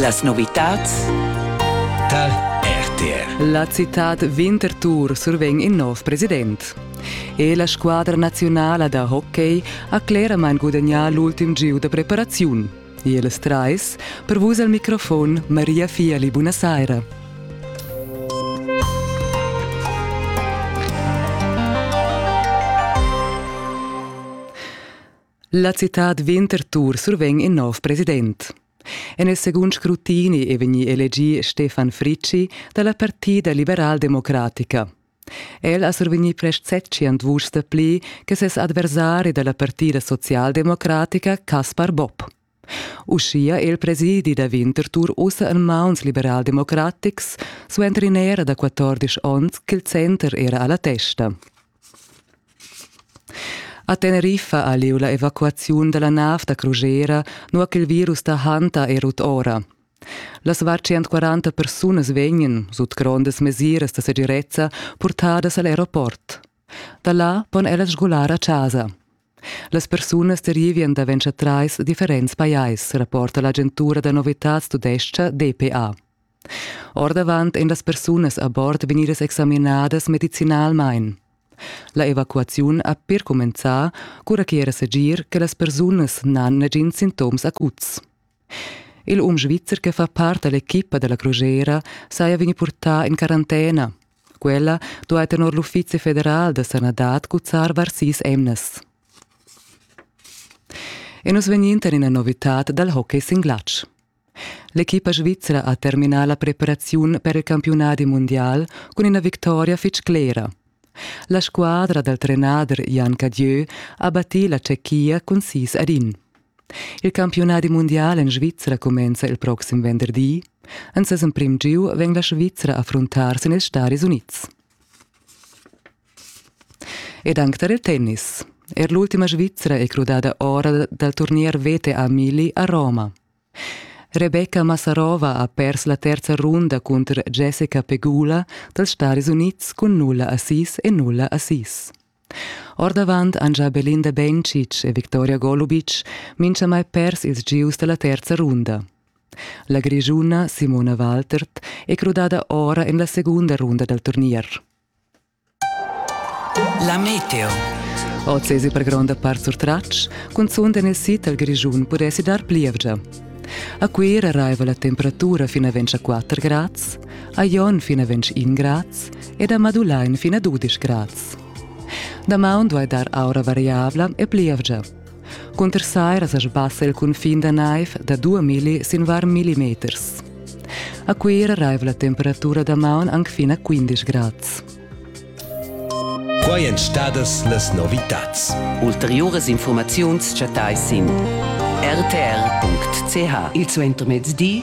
Las novitads tar RTR. La citad Winterthur survegn in nov president. E la squadra nazionala da hockey ha cleramain gudagnà l'ultim gieu da preparaziun. Ils trais, per vus al microfon Maria Fiali, buonasera. La citad Winterthur survegn in nov president. En il segund scrutini è vegnì elegì Stefan Fricci da la Partida liberaldemocratica. El ha survegnì prest setschient vuschs dapli che ses adversari da la Partida socialdemocratica Caspar Bob. Uschia è il presidi da Winterthur ussa en mauns liberaldemocratics, suenter in era da 14 onns ch'il center era a la testa. A Teneriffa ha lieu la evacuaziun da la nav da crugera, nua ch'il virus da Hanta è rut ora. Las var 140 persunas vegnan, sut grondas mesiras da segirezza, purtadas a l'aeroport. Da là pon ellas sgular a chasa. Las persunas derivien davent scha trais differents pajais, rapporta l'agentura da novitads tudescha DPA. Ordavant ein las persunas a bord vegnidas examinadas medicinalmein. La evacuaziun ha per cumenzar, cura che era segir che las persunas n'han negins sintoms acuts. Il um svizzer che fa part dall'equipa dalla Crugera saja vegni purtà in quarantena. Quella duai tenor l'Uffizi federal da sanadad cuzzar var sis emnas. E nus vegnind en ina novitad dal hockey sin glatsch. L'equipa svizzera ha terminà la preparaziun per il campiunadi mondial cun ina victoria fitg clera. La squadra dal trenader Jan Cadieu ha battì la Tschechia cun sis ad in. Il campiunadi mundial en Svizra cumenza il proxim venderdi. En ses emprim giu vegn la Svizra a affruntar sin ils Staris Unids. Ed anche tar il tennis. Er l'ultima Svizra è crudada ora dal turnier VTA Mili a Roma. Rebecca Massarova ha pers la terza runda cunter Jessica Pegula dals Staris Unids cun nulla assis e nulla assis. Ordavant han gia Belinda Bencic e Victoria Golubic minchamai pers ils gieus da la terza runda. La Grischuna Simona Waltert è crudada ora en la segunda runda dal turnier. La meteo. Oz per gronda part surtratg, cunzunt en il sid dal Grischun pudessi dar plievgia. A Cuira arriva la temperatura fino a 24 grads, a Jon fino a 21 grads ed ha madulà in fin a dudisch grads. Damaun duai dar aura variabla e plievgia. Cunter saira sa sbassa il cunfin da naiv da 2 milli sin var millimeters. A Cuira raiva la temperatura damaun anc fin a 15 grads. Quai èn stadas las novitads. Ulteriuras informaziuns chattais sin rtr.ch. Il suentermezdi